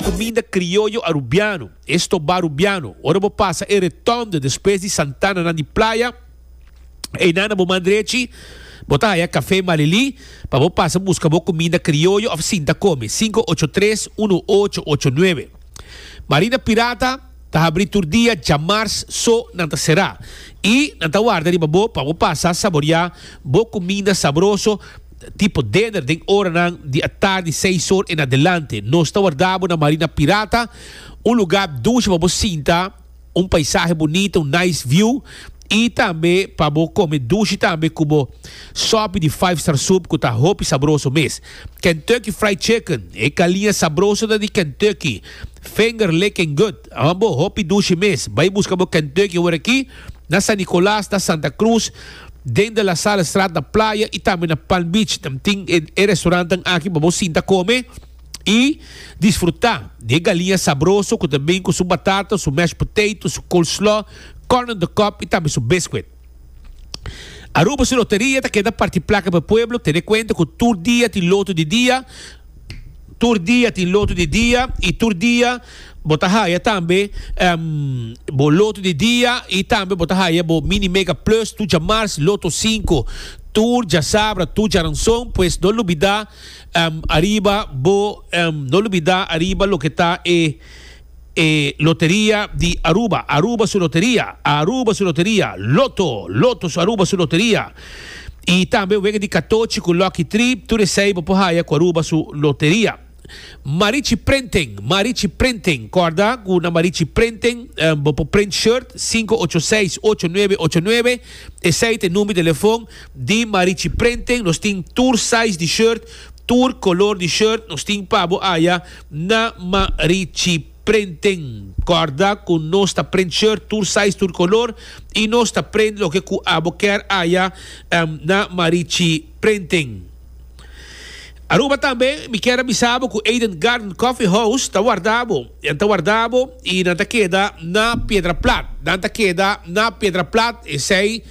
Cuminda crioyo Arubiano, estobá Arubiano, ora bo pasa e Retomde despues di Santana nan di Playa, einan na bo man drechi bo ta haya Café Malili pa bo pasa busca bo cuminda crioyo of sinta come, cinco ocho tres uno ocho ocho nueve. Marina Pirata ta habri tur dia djamars so nan ta cerá y nan ta warda riba bo pa bo pasa saboria bo cuminda sabroso Tipo deder den oranan di atardi seis or en adelante. Nos ta warda bo na Marina Pirata, un luga dushi pa bo sinta, un paisahe bunita, un nice view, y tambe pa bo come dushi tambe cu bo sopi di Five Star Soup cu ta hopi sabroso mes. Kentucky Fried Chicken, e caliña sabroso ta di Kentucky. Finger licking good, ambo hopi dushi mes. Bay busca bo Kentucky awor aki na San Nicolas, na Santa Cruz. den de La Salle Straat na Playa y tambe na Palm Beach. Nan tin e restaurantenan aki pa bo sinta come y disfruta di e galiña sabroso cu ta bin cu su batata, su mashed potato, su coleslaw, corn on the cob y tambe su biscuit. Aruba su loteria ta keda parti placa pa e pueblo, tene cuenta cu tur dia tin loto di dia. Tur dia tin lotu di dia, i tur dia bo ta haya tambe bo lotu di dia i tambe bo ta haya bo Mini Mega Plus Tuja Mars Loto Sinku tur djasabra, tur djaranson. Pues no lubida ariba bo, no lubida ariba loke ta e. E loteria di Aruba, Aruba su loteria, Aruba su loteria, Lotto, Lotto su Aruba su loteria, y tambe wega di katochi cu Lucky Tree, tur esey bo por haya cu Aruba su loteria. Marichi Printing, Marichi Printing, corda cu na Marichi Printing bo por print shirt, cinco ocho seis, ocho nuebe ocho nuebe, esey ta e number di telefon di Marichi Printing, nos tin tur size di shirt, tur color di shirt, nos tin pa bo haya. Na Marichi prenten kòrda ku nos ta prent shirt tur size tur kolor i nos ta prent loke ku abo kèr aya na Marichi prenten Aruba tambe mi kèr a bisa bo ku Eden Garden Coffee House ta warda bo nan ta warda bo i nan ta keda na Piedraplat nan ta keda na Piedraplat esei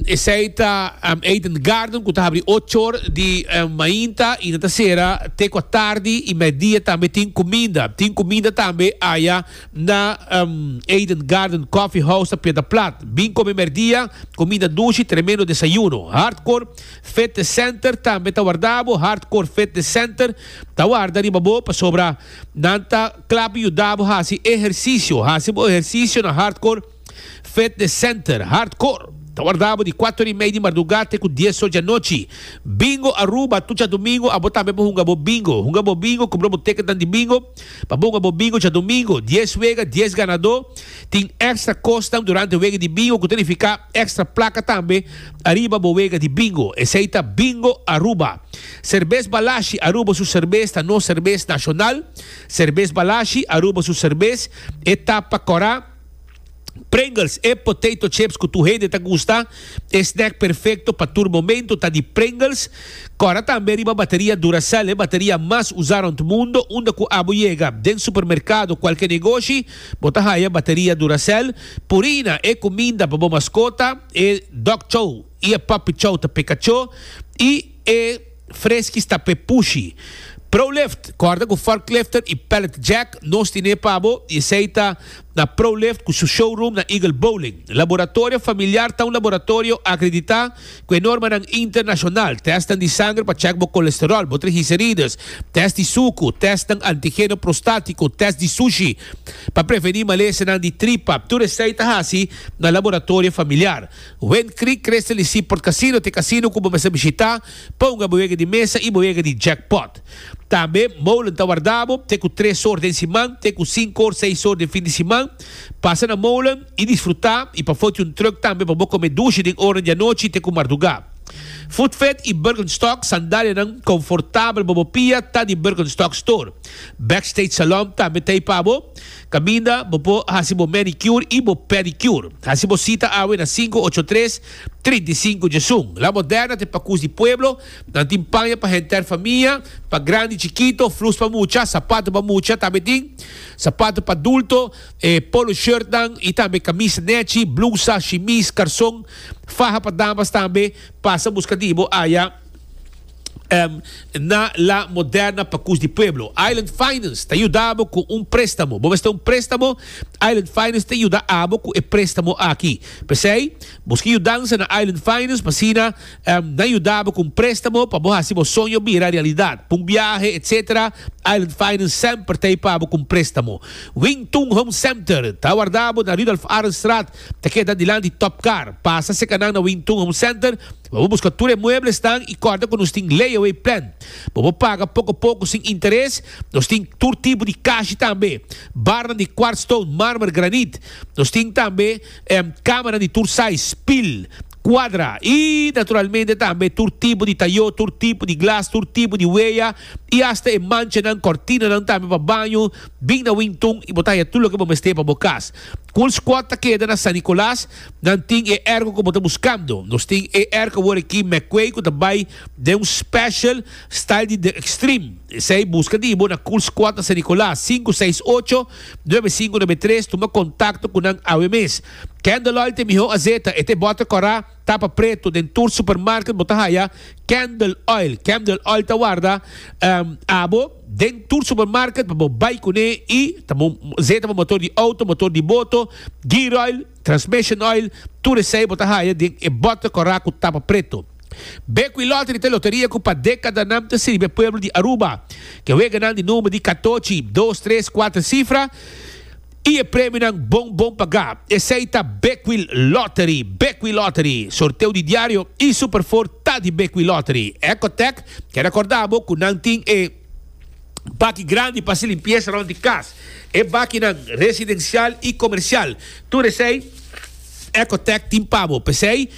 Esei ta Eden Garden cu ta habri ocho or di mainta y nan ta cera te cua tardi y medidia tambe tin cuminda. Tin cuminda tambe aya na Eden Garden Coffee House ta Piedra Plat. Bin come merdia, cuminda nushi, tremendo desayuno. Hardcore Fitness Center tambe ta warda bo. Hardcore Fitness Center ta warda riba bo pasobra nan ta clap yuda bo haci ehercicio. Haci bo ehercicio na Hardcore. Fitness Center, Hardcore, ta warda bo di kuater i mei di marduga te ku dies ocho di anochi. Bingo Aruba, Tur djadumingu abo tambe por hunga bo bingo. Hunga bo bingo, kumpra bo tekenan di bingo pa bo hunga bo bingo djadumingu. Dies wega, dies ganadó. Tin èkstra kosnan durante wega di bingo ku ta nifiká èkstra plaka tambe ariba bo wega di bingo. Esei ta Bingo Aruba. Serbes Balashi, Aruba su serbes ta nos serbes nashonal. Serbes Balashi, Aruba su serbes e ta pa kòrá. Pringles, E potato chips cu tur hende ta gusta. E snack perfecto pa tur momento ta di Pringles. Cora tambe riba bateria Duracell, e bateria mas usa rond mundo. Unda cu abo yega, den supermercado o cualke negoshi, bo ta haya bateria Duracell. Purina, E cuminda pa bo mascota, e dog chow y e puppy chow ta peka cho. Y e. Freski sta p'e pushi. ProLift, Kòrda ku forklifter i pallet jack nos tine pa bo i esei ta na ProLift ku su showroom na Eagle Bowling. Laboratorio familiar ta un laboratorio akreditá ku e normanan internashonal, tèstnan di sanger pa chèk bo kolesteròl, bo trigiserides, tèst di suku, tèstnan antigeno prostátiko, tèst di sushi pa prevení malesenan di tripa, tur esei ta hasi na laboratorio familiar. Wen Creek Crystal y Seaport Casino t'e casino cu bo mester bishita pa hunga bo wega di mesa y bo wega di jackpot. Tambe Molen ta warda bo te cu tres or den siman te cu cinco or seis or den fin di siman. Pasa na Molen y disfruta y pa foti un truck tambe pa bo come dushi den oranan di anochi te cu marduga. Food Fed y Birkenstock sandalianan confortabel pa bo pia ta di Birkenstock Store. Backstage Salon tambe t'ey pa bo. Kaminda bo por hasi bo manicure i bo pedicure. Hasi bo sita awe na sinku ocho tres, trinta i sinku Jesun. La Moderna te pakus di pueblo, nan tin paña pa henter famia, pa grandi, chikito, flus pa mucha, sapatu pa mucha, tambe tin sapatu pa dulto, e polo shirtnan i tambe kamis nechi, blusa, shimis, karson, faha pa damas tambe. Pasa buska di bo aya. Na La Moderna pa Cus di Pueblo, Island Finance ta yuda bo cu un prestamo. Bo mester un prestamo? Island Finance ta yuda abo cu e prestamo aki. P'esey, busca yudansa na Island Finance pa asina nan yuda bo cu un prestamo pa bo haci bo soño bira realidad. Pa un biahe, etc. Island Finance semper ta ey pa bo cu un prestamo. Wing Tun Home Center ta wardabo na Rudolf Arenstraat, ta keda dilanti di Top Car. Pasa secanan na Wing Tun Home Center. Bobo buska tur e mueblesnan i kòrda ku nos tin layaway plan. Bobo paga poko poko sin interes. Nos tin tur tipo di kashi tambe, barnan di kwart stone, marmer, granit. Nos tin tambe kamanan di tur sais, pil, kwadra i naturalmente tambe tur tipo di tayó, tur tipo di glas, tur tipo di weya i asta e manchanan, kòrtinanan tambe pa baño. Bin na Wingtun i bo ta haya tur loke bo mester pa bo kas. Coolsquad ta keda na San Nicolas. Nan tin e ergo cu bo ta buscando. Nos tin e ergo awor aki McQuay cu ta bay den un special style di The Extreme. Esey busca di bo na Cool Squad na San Nicolas, sinku seis ocho, nuebe sinku nuebe tres. Tuma contacto cu nan awe mes. Candleoil ta e miho azeta. E ta e bote cora, tapa preto. Den tur supermarket bo ta haya Candleoil. Candleoil ta warda abo. Den tur supermarket pa bo bai kuné i ta bo zeta bo motor di outo, motor di boto, gear oil, transmission oil, tur esei bo ta haya den e bòter kòrá ku tapa preto. Bekwí Lottery ta e loteria ku pa dekada nan ta sirbi e pueblo di Aruba. Ke wega nan di number di katochi, dos, tres, kuater sifra. Y e premionan bon bon pagá. Esei ta Bekwil Lottery, Bekwil Lottery, sorteo di diario y Super Four ta di Bekwil Lottery. Ecotec ke recorda bo cu nan tin e baki grandi pa haci limpieza rond di cas. E bakinan residencial y comercial. Tur esei Ecotec tin pa bo. P'esei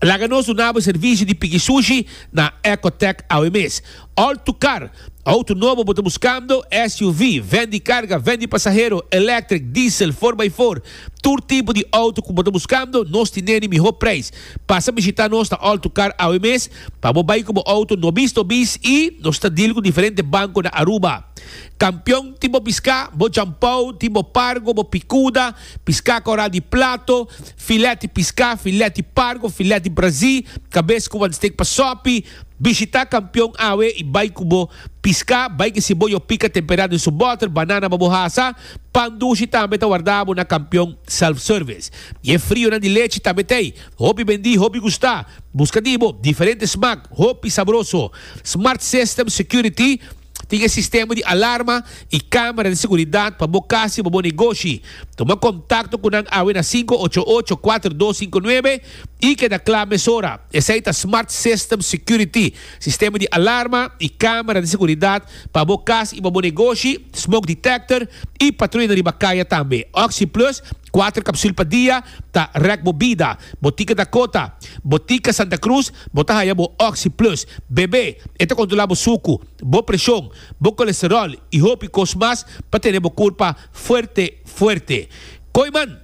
laga nos duna bo e servicio di piki sushi na Ecotec awe mes. Alto Car, Auto nobo bo ta buscando? SUV, Ven di carga, ven di pasahero, electric, diesel, four by four, tur tipo di auto cu bo ta buscando, nos tin neni miho prijs. Pasa bishita nos na Alto Car awe mes pa bo bay cu bo auto nobis nobis y nos ta deal cu diferente banco na Aruba. Campeon, Tin bo pisca, bo jampao, tin bo pargo, bo picuda, pisca coral di plato, filet di pisca, filet di pargo, filet di brazi, cabes cu wan steak pa sopi, Bishita kampion awe i bai ku bo piská. Bai kisi bo yo pika temperá den su bòter, banana pa bo hasa. Pan dushi tambe ta wardabo na kampion self-service. I e frionan di lechi tambe t'ei. Hopi bendí, hopi gustá. Buska di bo diferente smak, hopi sabroso. Smart System Security. Tin e sistema di alarma i camera di seguridad pa bo cas i pa bo negoshi. Tuma contacto cu nan awe na sinku ocho ocho kuater dos sinku nuebe i keda cla mesora. Esey ta Smart System Security, sistema di alarma i camera di seguridad pa bo cas i pa bo negoshi, smoke detector i patruyanan riba caya tambe. Oxyplus, kuater capsul pa dia, ta rek bo bida. Bo tin keda cota. Botica Santa Cruz bo ta haya bo Oxy Plus bebe. E ta controla bo sucu, bo presion, bo colesterol y hopi cos mas pa tene bo curpa fuerte fuerte. Koiman,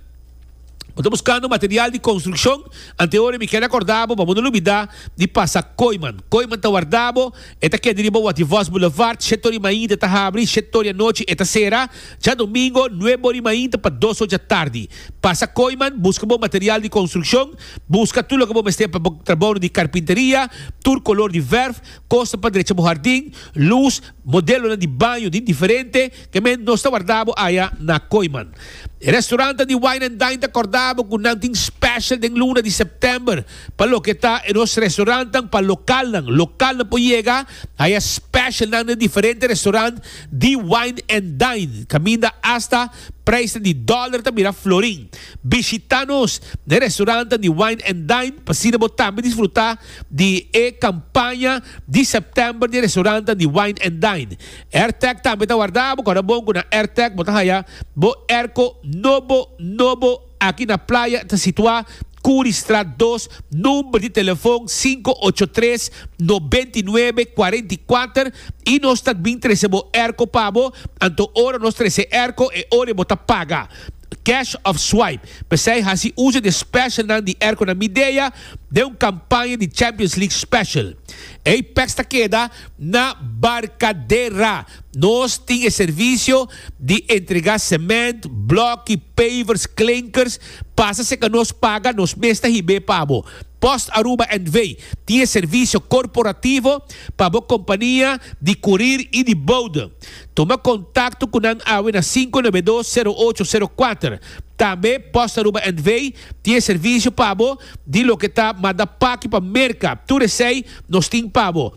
Bo ta buscando material di construccion? Antehoren mi keda corda bo pa bo no lubida di pasa Koiman. Koiman ta warda bo. E ta keda riba Wativos Boulevard, shete ori mainta e ta habri, shete ori anochi e ta cera. Djadomingo, nuebe ori mainta pa dos ori djatardi. Pasa Koiman, busca bo material di construccion. Buska tur loke bo mester pa bo trabounan di karpinteria, tur kolor di vèrf, kosnan pa drecha bo hardin, lus, modelonan di baño di diferente ke men nos ta wardá bo aya na Koiman. E restaurantan di Wine and Dine ta kòrdá bo ku nan tin special den luna di sèptèmber pa loke ta e nos restaurantan pa lokalnan. Lokalnan por yega aya specialnan na e diferente restaurant di Wine and Dine kaminda asta Prijsnan di dòler ta bira florin. Bishitá nos na e restorantenan di Wine and Dine pa asina bo tambe disfrutá di e kampaña di sèptèmber di e restorantenan di Wine and Dine. Airtag tambe ta wardá. Bo kòrda bon ku na Airtag bo ta haya bo airco nobo nobo. Aki na playa ta situá Curriestraat dos, number di telefon sinku ocho tres noventa i nuebe cuarenta i kuater i nos ta bin trese bo erko pa bo, anto ora nos trese erko e ora bo ta paga, cash of swipe. P'esei hasi uso di e specialnan di erkonan Midea den un campaña di Champions League special. Ei peks ta keda na Barcadera. Nos tin e servicio di entrega cement, bloki, pavers, klinkers, pasa si aka nos paga nos mes ta hib'é pa bo. Post Aruba NV. tin e servicio corporativo pa bo compania di curir y di bode. Toma contacto cu nan awe na sinku nab'é dos sero ocho sero kuater. Tambe Post Aruba NV. tin e servicio pa bo di loke ta manda paki pa Merka. Tur esei nos tin pa bo.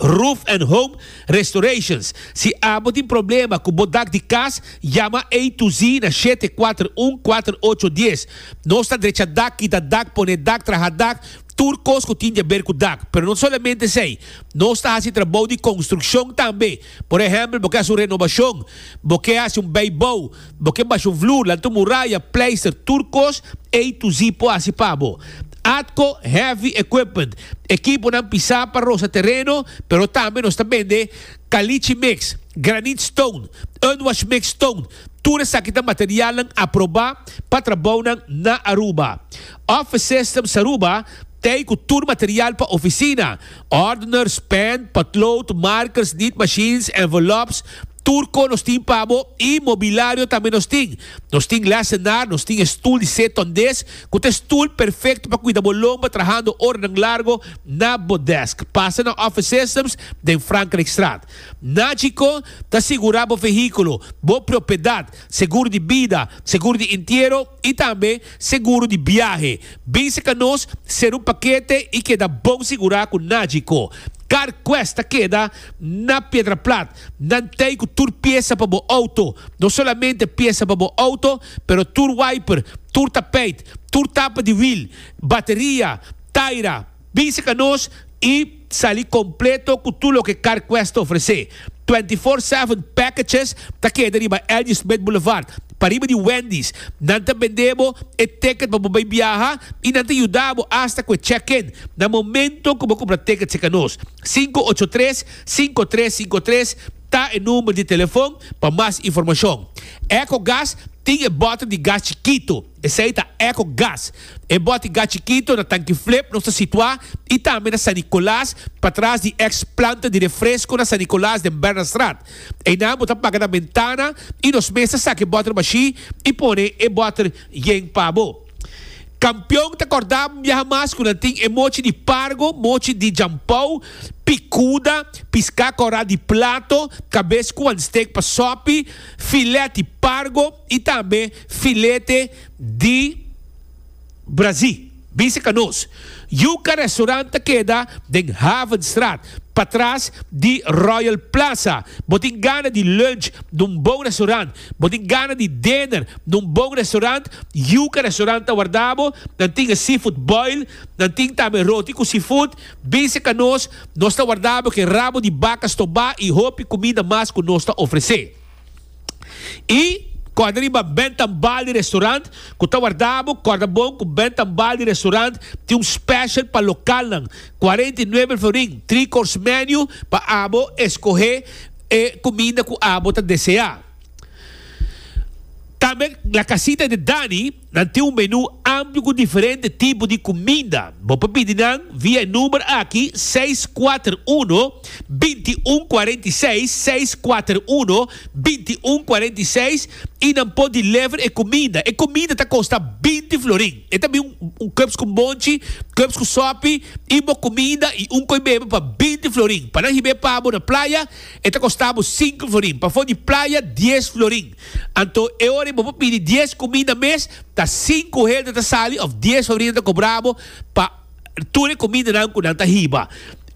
Roof and Home Restorations. Si abo tin problema ku bo dak di kas, yama A to Z na shete kuater un kuater ocho dies. Nos ta drecha dak, kita dak, pone dak, traha dak, tur kos ku tin di a ber ku dak. Pero no solamente esei, nos ta hasi trabou di konstrukshon tambe. Por ehèmpel bo ke hasi un renobashon, bo ke hasi un bèibou, Bo ke basho vloer, lanto muraya, pleister, tur kos ei tu zi por hasi pa bo. Atco Heavy Equipment, ekiponan pisá pa rosa tereno, pero tambe nos ta bende kalichi mix, granit stone, unwash mix stone, tur esaki ta materialnan aprobá pa trabounan na Aruba. Office Systems Aruba ta ei ku tur material pa ofisina, ordeners, pen, potlood, markers, nit machines, envelops, Turco nos tin pa bo y mobilario tambe nos tin. Nos tin lessenaar, nos tin e stoel di set ton des cu ta e stoel perfecto pa cuida bo lomba trahando oranan largo na bo desk. Pasa na Office Systems den Frankrijkstraat. Nagico ta sigura bo vehiculo, bo propiedad, seguro di bida, seguro di entiero y tambe seguro di biahe. Binse ca nos, cera un paquete y keda bon sigura cu Nagico. Carquest ta keda Na Piedra Plat, nan tei ku tur piesa pa bo outo, no solamente piesa pa bo outo, pero tur wiper, tur tapeit, tur tapa di wiel, bateria, taira, bisa ka nos i sali kompleto ku tur loke CarQuest ta ofresé. Twenty Four Seven Packages ta keda riba Elgie Smith Boulevard, pariba di Wendy's. Nan ta bendé bo e ticket pa bo bai biaha i nan ta yuda bo asta ku e check-in na momento ku bo kumpra tickets ei ka nos. Sinku ocho tres, sinku tres sinku tres ta e number di telefon pa mas informashon. Ecogas tin e bòter di gas chikitu, esei ta Ecogas. E bòter gas chikitu na Tanki Flip nos ta situá i tambe na San Nicolas patras di ex planta di refresko na San Nicolas den Bernardstraat. Einan bo ta paga na bentana i nos mes ta saka e bòter bashí i pone e bòter yen pa bo. Kampion ta kòrdá biahamas ku nan tin e mochi di pargo, mochi di jampou, pikuda, piská kòrá di plato, kabes ku wan stek pa sòpi, filèt di pargo i tambe filete di brazí. Bisa ka nos. Yuka Restaurant ta keda den Havenstraat, patras di Royal Plaza. Bo tin gana di lunch n'un bon restaurant Bo tin gana di dinner na un bon restaurant, yuca restaurant ta warda bo, nan tin e seafood boil, nan tin tambe roti cu seafood, Bise ca nos, nos ta warda bo ke rabo di baca stobá y hopi cuminda mas cu nos ta ofrece. Y corda riba Ben Tambali restaurant cu ta warda bo, corda bon cu Ben Tambali restaurant tin un special pa localnan, cuarenta y nuebe florin, three course menu pa abo escohe, e cuminda cu abo ta desea. Tambe La Casita de Dani nan tin un menu amplio cu diferente tipo di cuminda. Bo por pidi nan via e number aki seis kuater uno, binti un kuarenta i seis, seis kuater uno, binti un kuarenta i seis, y nan por deliver e cuminda. E cuminda ta costa binti florin. E ta bin un cups cu bonchi, cups cu sopi, y bo comida y un coi bebe pa binti florin. Pa nan hib'é pabo na playa, e ta costa bo cinco florin. Pa for di playa, dies florin. Anto, e ora bo por pidi dies comida mes, ta cinco hende ta sali of dies florin ta cobra bo pa. Tur e kumindanan ku nan ta hiba.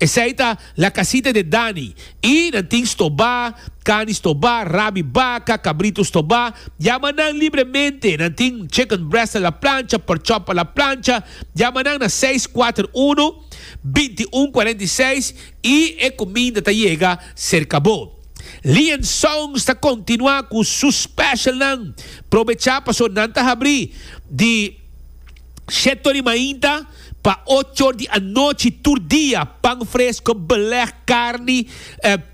Esei ta, La Casita de Dani. I nan tin stobá, kani stobá, rabi baka, kabritu stobá. Yama nan libremente. Nan tin chicken breast a la plancha, pork chop a la plancha. Yama nan na seis kuater unu, binti un kuarenta i seis i e kuminda ta yega serka bo. Lee and Sons ta kontinuá ku su specialnan. Probechá pasobra nan ta habrí di. Sete or di mainta pa ocho or di anochi tur dia, pan fresco, beleg, carni,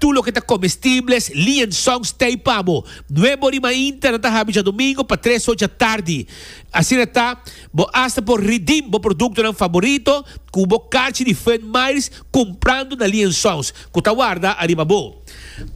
tur loke ta comestibles, liaison, stay pa abo. Nuebe or di mainta nan ta habi djadomingo pa tres or djatardi. Asina ta, bo hasta por redeem bo productonan favorito cu bo carchi di Fred Meyers cumprando na liaisons cu ta warda ariba bo.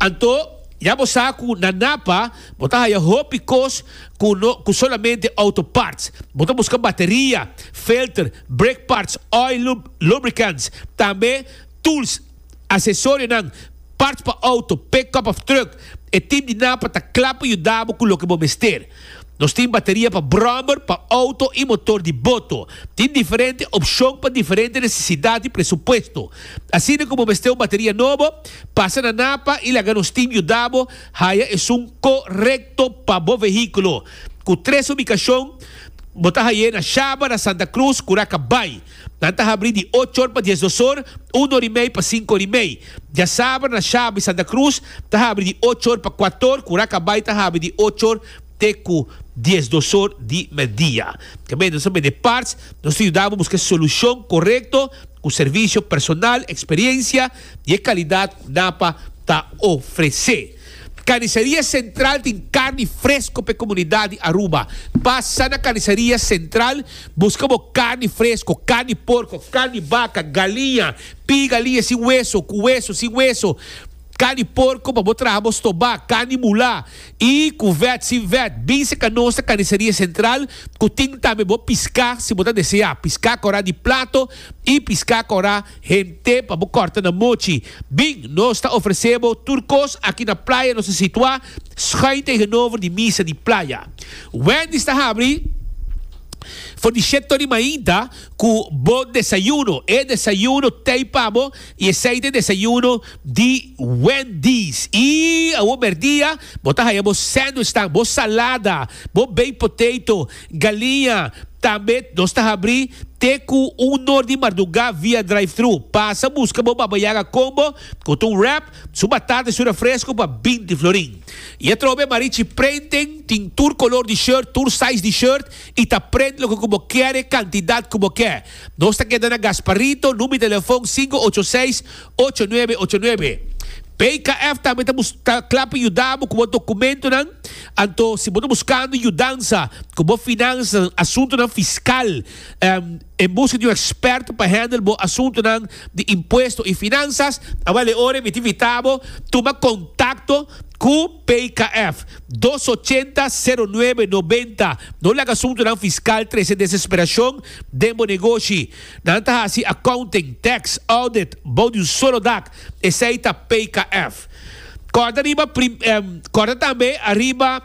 Anto, ya bo sa cu na Napa, Bo ta haya hopi kos ku no ku solamente outo parts. Bo ta buska bateria, filter, brake parts, oil, lub, lubricants, tambe tools, asesorionan, parts pa outo, pickup of truck. E tip di Napa ta kla pa yuda bo ku loke bo mester. Nos tin bateria pa brommer, pa outo i motor di boto. Tin diferente opshon pa diferente nesesidat i presupuesto. Asina ku bo mester un bateria nobo, pasa na Napa i laga nos tim yuda bo. Haya esun co-recto pa bo vehiculo. Cu tres ubicacion bo ta haye na Shaba, na Santa Cruz cu Raca Bay. Nan ta habri di ocho or pa dies dos or, un or y mey pa cinco or y mey. Diasaber na Shaba y Santa Cruz ta habri di ocho or pa cuato or cu Raca Bay ta habri di ocho or te cu dies dos or di medidia. Kebe nos a bende parts, nos ta yuda bo busca e solucion corecto cu servicio personal, experiencia, di e kalidat napa ta ofresé. Karniseria Sentral tin karni fresko p'e komunidat di Aruba. Pasa na Karniseria Sentral buska bo karni fresko, karni porko, karni baka, galiña, p'i galiña sin weso, ku weso, sin weso, karni porko pa bo traha bo stobá, karni mulá, i ku vèt, sin vèt. Bin seka nos na Karniseria Sentral ku tin tambe bo piská si bo ta deseá, piská korá di plato, I piská kòrá hente pa bo kòrta nan mochi. Bin, nos ta ofresé bo tur kos aki na playa nos ta situá skuin tegenover di misa di playa. Wendy's ta habri for di shét tori mainta ku bo desayuno. E desayuno tei pa bo i esei ta e desayuno di Wendy's. I awor merdia bo ta haya bo sandwichnan, bo salada, bo baked potato. Galinha, Tambet nos ta habri te ku un nor di mardugá via drive-thru. Pasa buska bo Baba Yaga Combo ku ta un wrap, su batata i su refresco pa binti florin. I atrobe Marichi Printing tin tur kolor di shirt, tur size di shirt i ta print loke ku bo kere, kantidat ku bo ke. Nos ta keda na Gasparito, number di telefon sinku ocho seis, ocho nuebe ocho nuebe. PKF tambe ta bus ta kla pa yuda bo ku bo dokumentunan. Anto si bo ta buskando yudansa ku bo finansanan, asuntunan fiskal, em, en buska di un eksperto pa hendel bo asuntunan di impuesto i finansas, a bale ora mi ta invitá bo tuma kontakto ku PKF, dos ochenta sero nuebe nobenta. No laga asuntunan fiskal trese desesperashon den bo negoshi. Nan ta hasi accounting, tax, audit bou di un solo dak, esey ta PKF. Corda riba prim, em, corda tambe ariba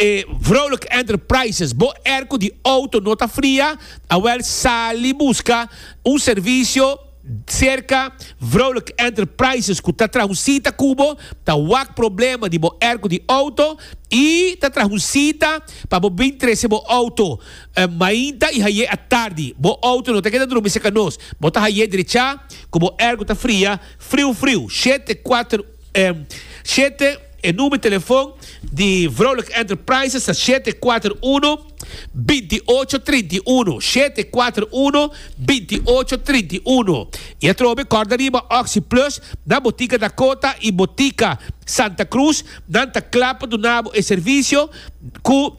e Vrolijk Enterprises. Bo er cu di auto no ta fria, awel sali busca un servicio cerca Vrolijk Enterprises cu ta traha un cita cu bo, ta wak problema di bo er cu di auto y ta traha un cita pa bo bin trece bo auto. mainta i haye atardi. Bo outo no ta keda drumi cerca nos. Bo ta haye drecha cu bo ergo ta fria, friu friu. Shete kuater shete e numer telefon di Vrouwelijke Enterprises ta shete kuater uno, binti ocho, trinti uno. Shete kuater uno, binti ocho, trinti uno. I atrobe corda riba Oxi Plus na Botica Dakota i Botica Santa Cruz. Nan ta cla pa duna bo e servicio cu.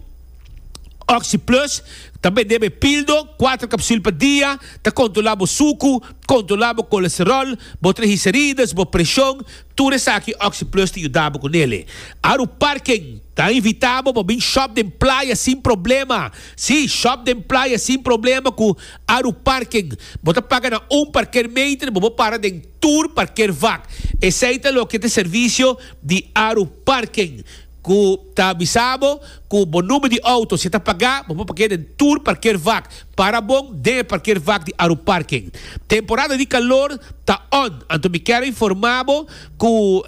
Oxy Plus ta bendé bo e pildo, kuater kapsul pa dia, ta kontrolá bo suku, kontrolá bo kolesteròl, bo trigiserides, bo preshon, tur esaki Oxy Plus ta yuda bo ku nele. Aru Parken ta invitá bo pa bin shòp den playa sin problema. Sí, shòp den playa sin problema ku Aru Parken. Bo ta paga na un parkeermeter, bo por para den tur parkeervak. Esei ta loke ta servisio di Aru Parken. ku ta avisa bo ku bo number di outo si ta pagá bo por park'é den tur parkeervak. Para bon den e parkeervak di Aruparking. Temporada di kalor ta on, anto mi kèr a informá bo ku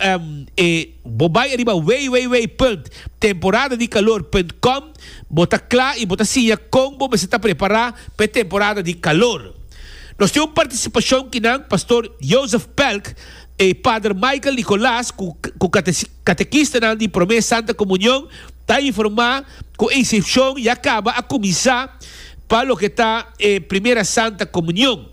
e bo bai riba www. Temporadadikalor.com bo ta kla i bo ta siña kon bo mester ta prepará pa e temporada di kalor. Nos tin un partisipashon kinan Pastor Joseph Pelk i Pader Michael Nicolas ku. Katekistanan di promé Santa Komunion ta informá ku e isepshon ya kaba a kuminsá pa loke ta e Primera Santa Komunion.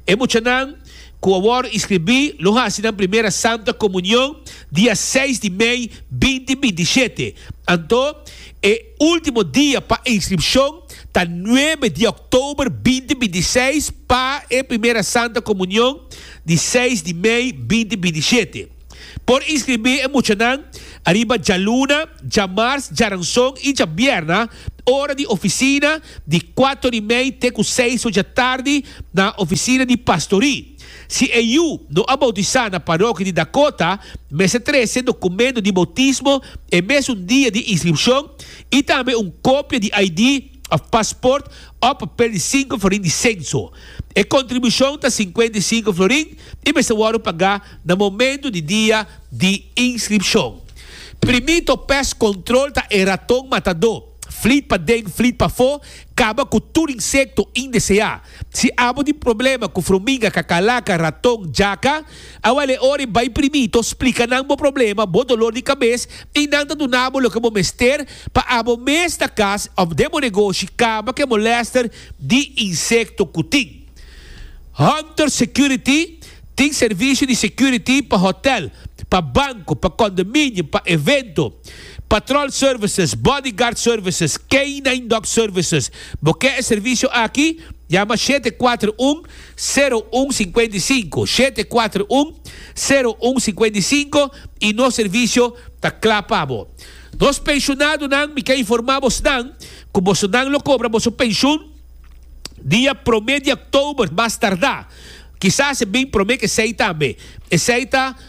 E muchanan ku a wòrdu inskribí lo hasi nan Primera Santa Komunion dia seis di mei binti binti shete. Anto e último dia pa e inskripshon ta nuebe di òktober binti binti seis pa e Primera Santa Komunion di seis di mei binti binti shete. Por inskribí e muchanan ariba djaluna, djamars, djaranson i djabierna ora di ofisina di kuato di mei te ku seis ocha tardi na ofisina di pastorí. Si e yu no a boutisá na parokia di Dakota, mester trese dokumentu di boutismo e mesun dia di inskripshon i tambe un kopia di ID. of passport op pedi sinku florin di senso. E kontribushon ta sinkuenta i sinku florin i mester wòrdu pagá na momentu di dia di inskripshon. Primita o pes kontrol ta e raton matadó, flit paden flit pafó, kaba ku tur insekto indeseá. Si abo tin problema ku fruminga, kakalaka, raton, jaka, A wale ora i bai primito splika nan bo problema, bo dolor di kabes i nan ta duna bo loke bo mester pa abo mes na kas òf den bo negoshi kaba ku e molèster di insekto ku tin. Hunter Security tin servisio di security pa hotèl, pa banko, pa kondominium, pa evento, patròl services, bodyguard services, K-nine dog services. Bo ke e servisio aki? Yama shete kuater un. sero un sinkuenta i sinku, shete kuater un, sero un sinkuenta i sinku, i nos servisio ta kla pa bo. Nos penshunadonan mi ke informá bosnan ku bosonan lo kobra boso penshun dia promé di òktober mas tardá, kisas e bin promé ku esei tambe. Esei ta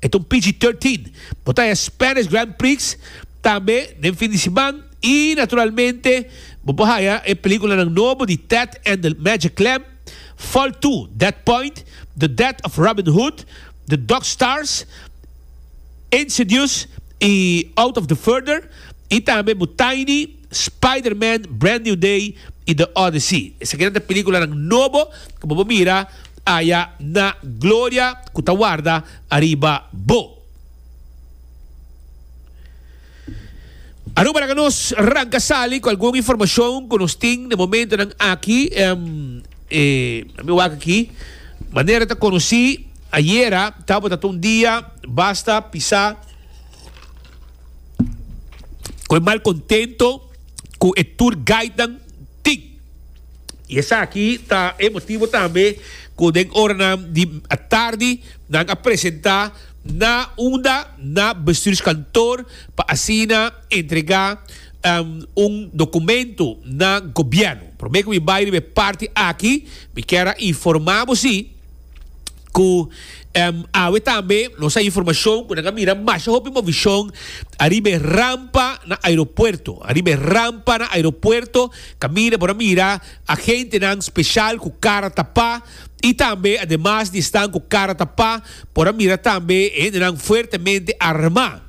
E ta un PG-13. Bo ta e Spanish Grand Prix tambe den fin di siman i naturalmente bo por haya e peliculanan nobo di Ted and the Magic Clam, Fall Two, Dead Point, The Death of Robin Hood, The Dog Stars, Insidious i Out of the Further i tambe bo Tiny. Spider-Man, Brand New Day i The Odyssey. Esakinan ta películanan nobo cu bo por mira aya na gloria cu ta warda ariba bo. Aruba laga nos ranca sali cu algun informacion cu nos tin na momentonan aki. E mi wak aki manera ta conoci ayera tabata ta un dia basta pisa. cu e mal contento cu e tour guidenan tin. Y esaki ta e motibo tambe cu den oranan di atardi nan a presenta na unda na bestuurskantoor pa asina entrega un documento na gobierno. Prome cu mi bay riba e parti aki mi kier a informa bo si, Cu awe tambe nos a informacion cu nan a mira masha hopi movicion ariba e rampa na aeropuerto. Ariba e rampa na aeropuerto caminda por a mira agentenan special cu cara tapa y tambe ademas di esnan cu cara tapa por a mira tambe e hendenan fuertemente arma.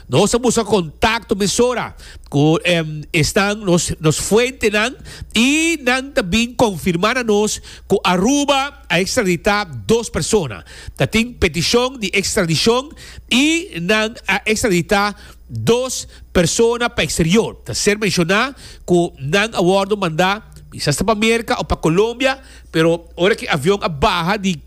Nos a busca contacto mesora cu esnan nos fuentenan y nan ta bin confirma na nos cu Aruba. a ekstraditá dos persona. Ta tin petishon di ekstradishon i nan a ekstraditá dos persona pa eksterior. Ta ser menshoná ku nan a wòrdu mandá kisas ta pa Merka òf pa Kolombia, pero ora ku e avion a baha di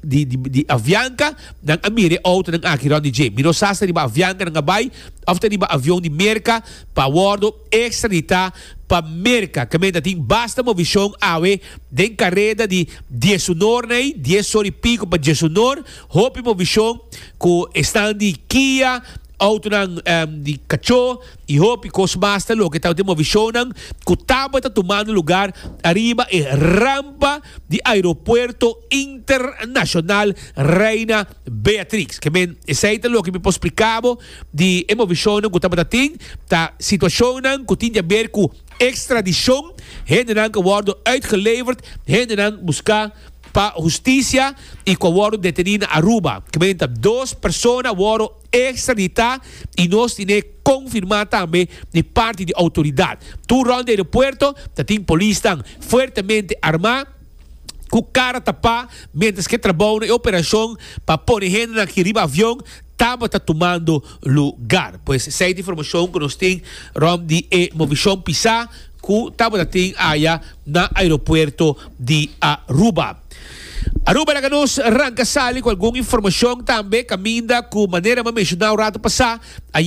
Avianca nan a mira e outonan aki rònt di dje. Mi no sa si ta riba Avianca nan a bai òf ta riba avion di Merka pa wòrdu. Extra di ta pa Merca camen ta tin basta movicion awe den careda di dies honor na ei, dies sor y pico pa dies honor, hopi movicion cu esnan di Kia, autonan di cacho y hopi cos mas ta loke tabatin movicionnan cu tabata tumando lugar ariba e rampa di Aeropuerto Internacional Reina Beatrix, Ke men, esei ta loke mi por spliká bo di e movishonnan ku tabata tin, ta situashonnan ku tin di a ber ku ekstradishon, hendenan ku a wòrdu uitgeleverd, hendenan buska pa hustisia i ku a wòrdu detení na Aruba. Ke men ta dos persona a wòru ekstraditá i nos tine konfirmá tambe di parti di outoridat. Tur rònt di aeropuerto ta tin polisnan fuertemente armá. ku kara tapá miéntras ke trabou na e operashon pa pone hendenan aki riba avion tabata tumando lugar. Pues esei ta e informashon ku nos tin rònt di e movishon pisá ku tabata tin aya na aeropuerto di Aruba. Aruba laga nos ranka sali ku algun informashon tambe kaminda ku manera mi a menshona un ratu pasá.